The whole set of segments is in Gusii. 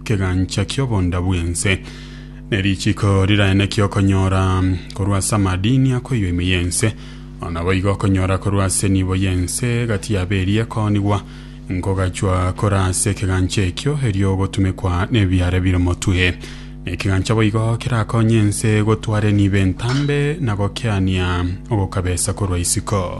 ekegancha ki'obonda bw'ense, ne richiko riraeneki okonyora korwa ase amadini akoiyo ime y'ense, na naboigo okonyora korwa ase enibo y'ense gati yabo eria ekoonigwa, nkogachwa kore ase ekegancha ekio erio ogotumekwa nebiara bire omotwe. Na ekegancha boigo kerakonye ense gotwara enibo entambe na gokeania ogokabesa korwa isiko.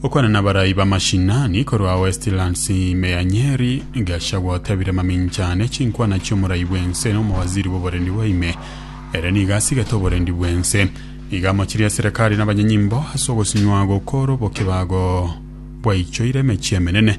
Okwana na abarai b'amashinani korwa Westlands ime ya Nyeri, Gachagua otebire mamincha ane chinkwana chi'omorai bw'ense na omowaziri bw'oborendi bwa ime ere nigo asigete oborendi bw'ense. Iga amochirie eserekari na abanyenyimbo ase ogosinywa gokoro bokibago bwaichoire emechie emenene.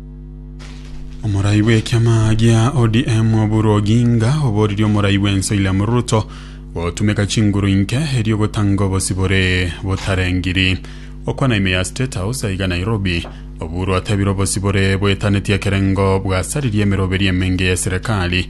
Omorai bw'ekiama gia ODM Oburu Oginga oboririe omorai bw'ense William Ruto gotumeka chinguru inke erio gotanga obosibore botarengiri. Okwana ime ya State House aiga Nairobi, Oburu atebire obosibore bwetaneti ekerengo bwasaririe emeroberio emenge ye serikali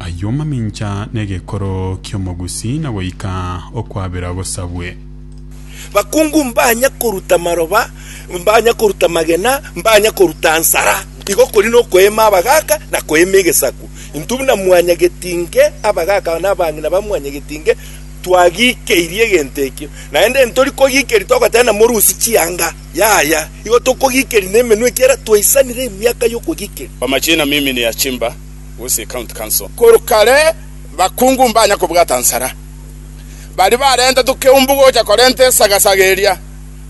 Ayio mamincha n'egekoro ki'omogusi na goika okwabera gosabwe. Bakungu mbanya koruta maroba, mbanya koruta magena, mbanya koruta nsara, igo kori nokoeema abagaaka na koeema egesaku. Intwe buna mwanyagetinge, abagaaka na abang'ina ba mwanyagetinge, twagikeirie egento ekio. Naende ntori kogikeria togoteba namorusie chianga, yaya, igo tokogikeria nemenwa ekiagera twaisanire emiaka y'okogikeria. Kwa majina mimi ni Achimba gose ecounty council. Korwa kare bakungu mbanya kobwata nsara. Baria barenta tokeumbu gocha korenta esagasaga eria,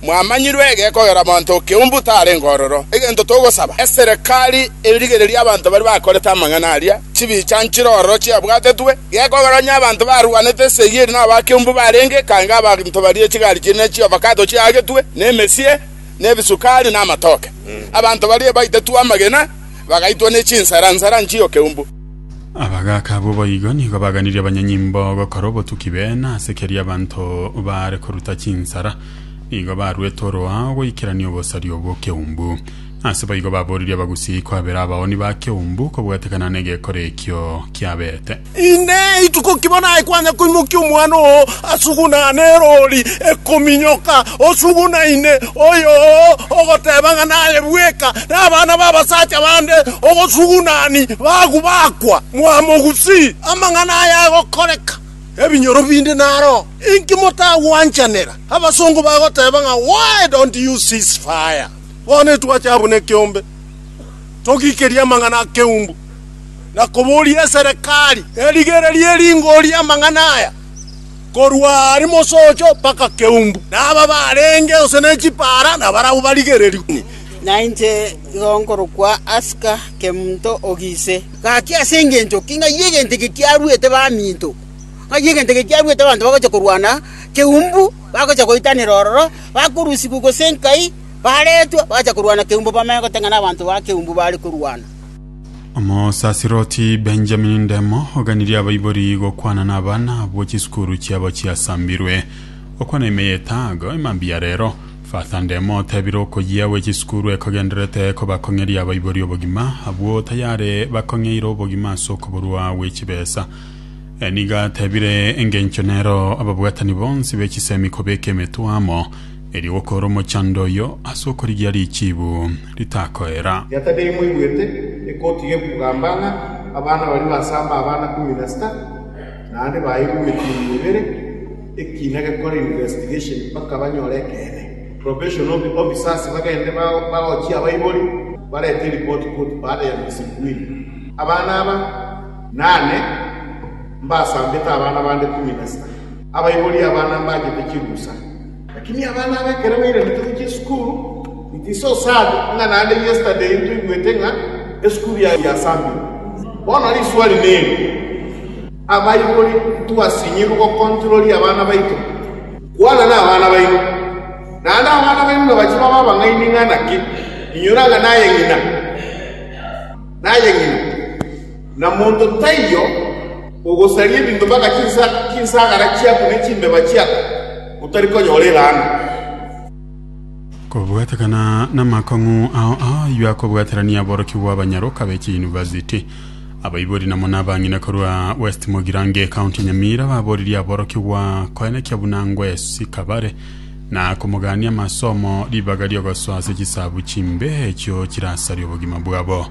mwamanyirwe egekogera monto okeumbu tarenge ororo. Egento togosaba eserekari erigererie abanto baria bakorete amang'ana aria, chibicha nchire ororo chiabwatetwe, gekogera onye abanto barwanete esegi eria nabo bakeumbu barenge ekange abanto baria echigari chiria ne chiovakato chiagetwe, ne emesie, ne ebisukari, na amatoke. Abanto baria baitetwe amagena, bagaitwa ne chinsara nsara nchio keumbu. Abagaaka abwo boigo nigo baganirie abanyanyimbo gokora obotuki b'eena, ase keria abanto baare koruta chinsara nigo baruete oroao goikerania obosario bw'okeumbu. Ase boigo baboririe abagusii kwabera abaoni ba keumbu kobwatekana negekora ekio kiaberete. Inee, ituko ki bono aye kwanya koimokia omwana oo asugunane eroori ekominyoka osugunaine oyoo, ogoteeba ng'a naye bweka nabana b'abasacha bande ogosugunani bagu bakwa? Mwamogusi! Amang'ana aya agokoreka, ebinyoro binde naro. Inki motagwanchanera? Abasongo bagoteeba ng'a, Why don't you cease fire? Bono etwache abwo nekeombe, togikerie amang'ana akeumbu. na koboria eserekari erigererie ringori amang'ana aya, korwa aare mosocho mpaka keumbu, na aba barenge gose ne chipaara nabarabwo barigererigwe. Na inche igo nkorokwa Asika, Kemonto o Gise. Gaki ase engencho ki ng'ai egento eke kiaruete baminto? Ng'ai egento eke kiaruete abanto bagocha korwana keumbu, bagocha goitanera ororo, bakorusigwa gose nkai, baretwa, bagacha korwana keumbu, bamanye goteng'ena abanto ba keumbu baare korwana? omosasiroti benjamin ndemo oganirie abaibori gokwana na abana abwo chisukuru chiabo chiasambirwe gokwana ime ya etago emambia ya rero father ndemo otebire okoyia gwe chisukuru ekogenderete kobakong'eria abaibori obogima abwo tayare bakong'eire obogima ase okoborwa gwe chibesa Eniga atebire engencho nero ababwatani bonsi be chisemi kobeka emetwe amo Erio gokoora omochando oyio ase okorigia richiibu ritakoera. Gete neimoigwete ekoti gekugamba ng'a abana baria basamba abana kumi na sita naende baeirwe emetinyi ebere ekiina gekore investigation mpaka banyore ekeene. Probation officers bagende bagochie abaibori barete eripoti koti baada ya miezi miwili. Abana aba nane mbasambete abana bande kumi na sita. Abaibori abana mbachete chirusa, lakini abana aba ekero bairanete gochia esukuru, it is so sad ng'a naende yesterday ntoigwete ng'a esukuru ya yasamire. Bono riswali neri, abaibori ntwasinyigwe gokontroria abana baito? Kwana nabana baino, naende abana baino nabache babe abang'aini ng'a naki inyora ng'a naye ng'ina, naye ng'ina. Na monto taiyo ogosaria ebinto mpaka chinsagara chiaku ne chimbeba chiaku, otari konyora elaana. Kobwatekana namakong'u ao ayio akobwaterania aborokigwa abanyaroka be chiyunivasiti, abaibori na muna abang'ina korwa West Mogirange, County Nyamira baboririe aborokigwa koenekia buna ngwesika bare na komogania amasomo ribaga riogosoa ase chisabu chimbe echio chirasarie obogima bwabo.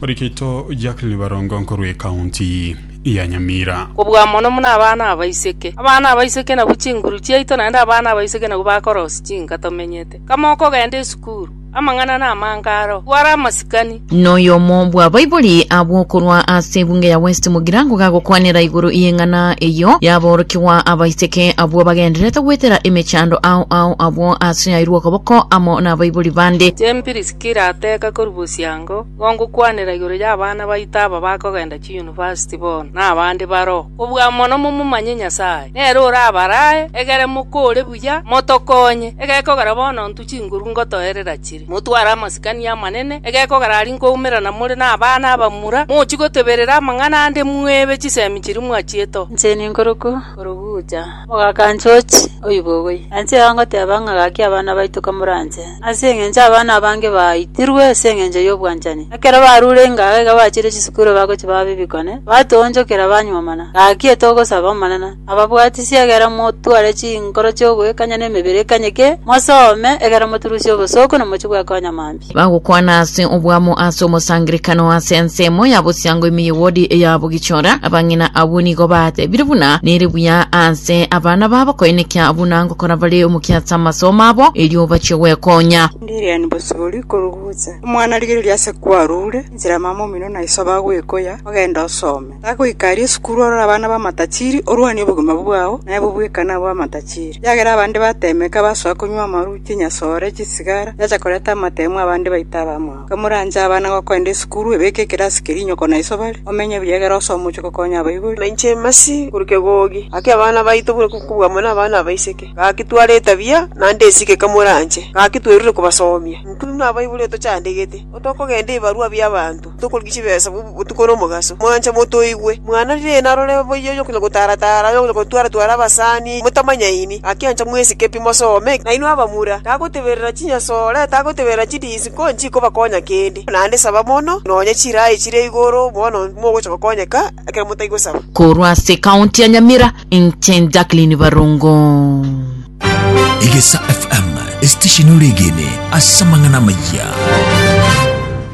Orikaito Jacqueline Barongo nkorwa ekaunti ya Nyamira. Kobua mono buna abana abaiseke. Abana abaiseke nabwo chinguru chiaito naende abana abaiseke nabwo bakorosia chinka tomenyete. Kama okogenda esukuru, amang'ana namange aro, twara amasikani. Noyomo bw'abaibori abwo korwa ase ebunge ya West Mugirango gagokwanera igoro y'eng'ana eyio y'aborokigwa abaiseke abwo bagendererete goetera emechando ao ao abwo ase yairwe okoboko amo nabaibori bande. Jane Piriskila ateka korwa bosianga. omosango gongokwanera igoro y'abana baito aba bakogenda chiyunivasiti bono, na abande baroo, kobua mono momomanye Nyasae. Nere orabaraae egere mokore buya, motokonye. Egekogera bono ntwe chinguru ngotoerera chire, motware amasikani amanene, egekogera aria nkoumerana more nabana abamura, mochie goteberera amang'ana ande, mwebe chisemi chiria mwachiete oo. Inche ninkorokwa Korogwucha. Omogaka George oibogoi, anche iga ngoteba ng'a gaki abana baito kamoranche, ase engencho abana abange baaitirwe ase engencho y'obwanchani. Ekero barure ingaga iga bachire chisukuru bagochia baba b'ebikone, batoonchokera banyuomana. Gaki etogosaba, Omonene, ababwatisie egere motware chinkoro chi'ogoikanya na emebere ekanyeke, mosome egere moturusie obosooku na mochie gwekonya mambia. Bagokwana ase obwamo ase omosangerekano ase ensemo ya bosiango ime ye wodi eya Bugichora. Abang'ina abwo nigo batebire buna nere buya ase abana babo koenekia buna ngokora bare omokia ase amasomo abo erio bachie gwekonya. Ndiriani bosibori korugucha. Omwana rigereria ase kwarure, inchera mama omino na iso bagwekoya, ogende osome. Tagoika aria esukuru orore abana b'amatachiri, orwanie obogima bwao, naye bobweka nabo b'amatachiri. Ekiagera abande bateemeka, basoa konywa amaru, chinyasore, chisigara, chiacha koreta amateemu, abande baita abamwabo. Kamoranche abana gokoenda esukuru, ebeke ekerasi keria inyoko na iso bare, omenye buya egere ose omochie gokonya abaibori. Na inche Mercy, korwa kegogi, gaki abana baito buna kobua amo nabana abaiseke, gaki tware etabia, naende esike kamoranche, gaki twerure kobasoomia. Intwe buna abaibori otochandegete, otokogenda ebarua bi'abanto. Tokorigia chibesa botuko na omogaso. Mwanche motoigwe. Mwana riina arore boyio onya konya gotara tara, onya konya gotwara twara abasani, motamanyaini. Gaki ancha mwesike pi mosome. Nainwe abamura, tagoteberera chinyasore, tagoteberera chidisiko, nchikobakonya kende. Naende saba mono, nonya chiraai chire igoro, bono mogocha gokonyeka ekero motaigosaba. Korwa ase County ya Nyamira, inche Jacqueline Barongo. Egesa FM, esitesheni oregene ase amang'ana amayia.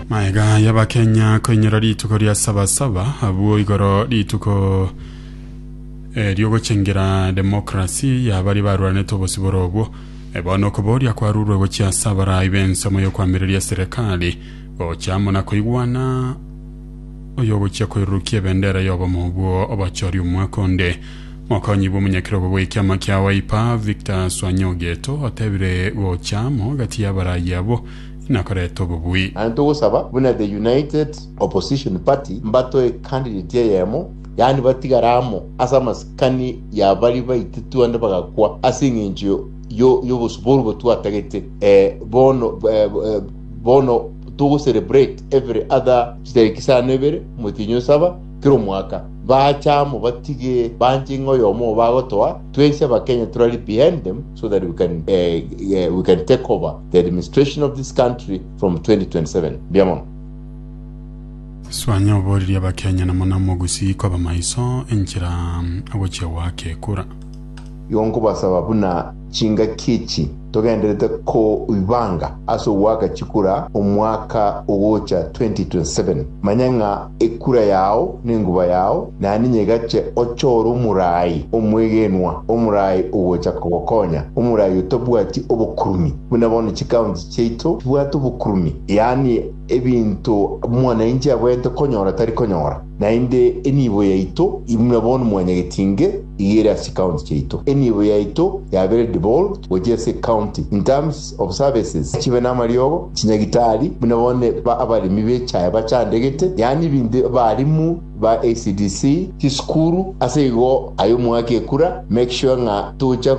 Maega y'Abakenya koinyora rituko ria Sabasaba abwo igoro rituko eh, riogochengera demokrasi yabari barwanete obosibore obwo Eh, bono okoboria kwarurwe gochia ase abarai b'ensemo y'okwamireria serikali gocha amo na koigwana oyogochia koirurukia ebendera y'obomo obwo obochori omwaka onde Mokonyi bw'omonyakerogo bw'ekiama kia Wiper, Victor Swanyogeto, otebire gocha amo gati y'abaraayi abwo nakorete obobui. Aye togosaba buna the United Opposition Party mbatoe candidate eyemo, yaani batigare amo ase amasikani ya baria baititu ande bagakwa ase eng'encho y'obosubwa oborwo twatagete. Bono bono togo celebrate every other chitariki isano ibere, motienye osaba. Kera omwaka baacha amo batige banche ng'a oyomo obo agotoa twese abakenya tore ari behind them so that we can eh, eh, we can take over the administration of this country from 2027 mbuya mono Suanya oboririe abakenya na muna mogusii koba maiso enchera agochia goaka ekura. Igo nkobasaba buna Chingaki echi togenderete koibanga ase ogoaka chikura omwaka ogocha 2027, manya ng'a ekura yao nenguba yao na ninye egache ochore omorai omwegenwa, omorai ogocha kogokonya, omorai otabwati obokurumi buna bono chikaunti chiaito chibwate obokurumi, yaani ebinto mwananchi abwenerete konyora tari konyora. Naende enibo yaito imwe bono mwanyagetinge igere ase chikaunti chiaito. Enibo yaito yabere devolved gochia ase ecounty in terms of services chibe namariogo, chinyagitari, buna bono abaremi b'echae bachandegete, yaani ebinto abarimu ba ECDC, chisukuru, ase igo aye omwake ekura make sure ng'a tocha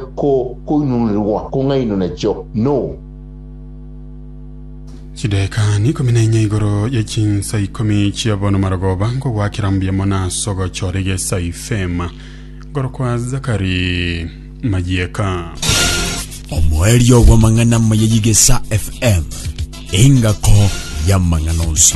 koinunerwa kong'ainwa nachio. No. Chidaeka n'ikomi na inya igoro ye chinsa ikomi chia bono marogoba nkogwakera mbuya mono ase ogochora egesa ifema nkorokwa Zakari Mayieka. omoerio bw'amang'ana amaya y'igesa fm engako y'amang'ana onsi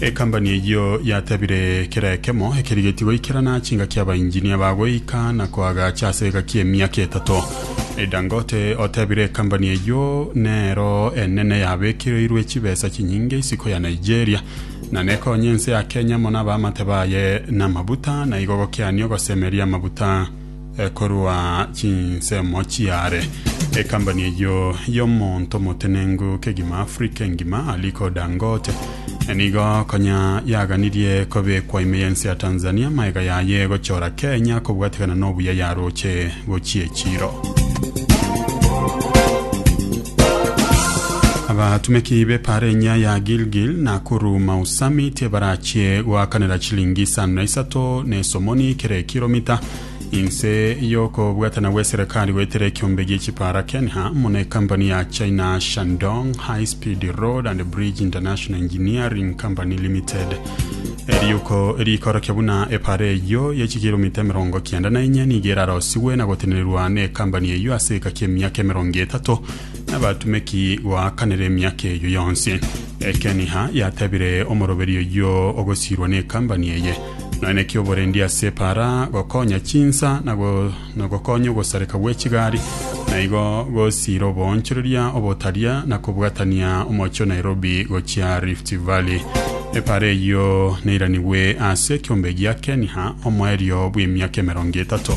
Ekambani eyio yatebire kera ekemo ekerigetie goikerana chingaki abainjinia ba goika na koagacha ase egaki emiaka etato. Dangote otebire ekambani eyio nero enene yabekereirwe chibesa chinyinge isiko ya Nigeria na nekonye ense ya Kenya mono abaamate baye namabuta na igo gokeania ogosemeria amabuta korwa chinsemo chiare. Ekambani eyio y'omonto omotenenku kegima Africa engima, Aliko Dangote, nigo konya yaganirie kobekwa ime y'ense ya Tanzania amaega yaye gochora Kenya kobwatekana n'obuya yaroche gochia echiro. Abatumeki b'epara enyia ya Gilgil, Nakuru, Mau Summit, ebarache chie goakanera chilingi isano na isato na esomoni kera ekiromita inse y'okobwatana gw'eserekari goetera ekiombe gi'echipara Kenya muna ekampani ya China Shandong High Speed Road and Bridge International Engineering Company Limited eriuko riikorokia buna epara eyio y'echikiromita emerongo kianda na inye nigo erarosigwe na gotenererwa na ekampani eyio ase egeka ki'emiaka emerongo etato n'abatumeki goakanera emiaka eyio yonsi Ekeniha yatebire omoroberi oyio ogosiirwa nekambani eye, Nonya ki oborendi ase epaara, gokonya chinsa, na go- na gokonya ogosareka gw'echigari, na igo gosiira oboonchoreria obotaria na kobwatania omochie o Nairobi gochia Rift Valley. Epaara eyio neiranigwe ase ekiombe gia Keniha omoerio bw'emiaka emerongo etato.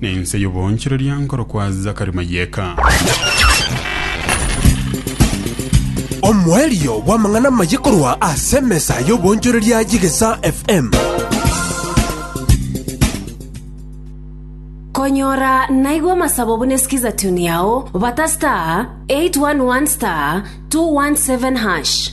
Nense y'oboonchoreria nkorokwa Zakari Mayeka. Omoerio bw'amang'ana amaye korwa ase emesa y'oboonchoreria y'Egesa FM. Konyora naigwa amasabo buna esikiza tune yao bata star 811 star 217 hash.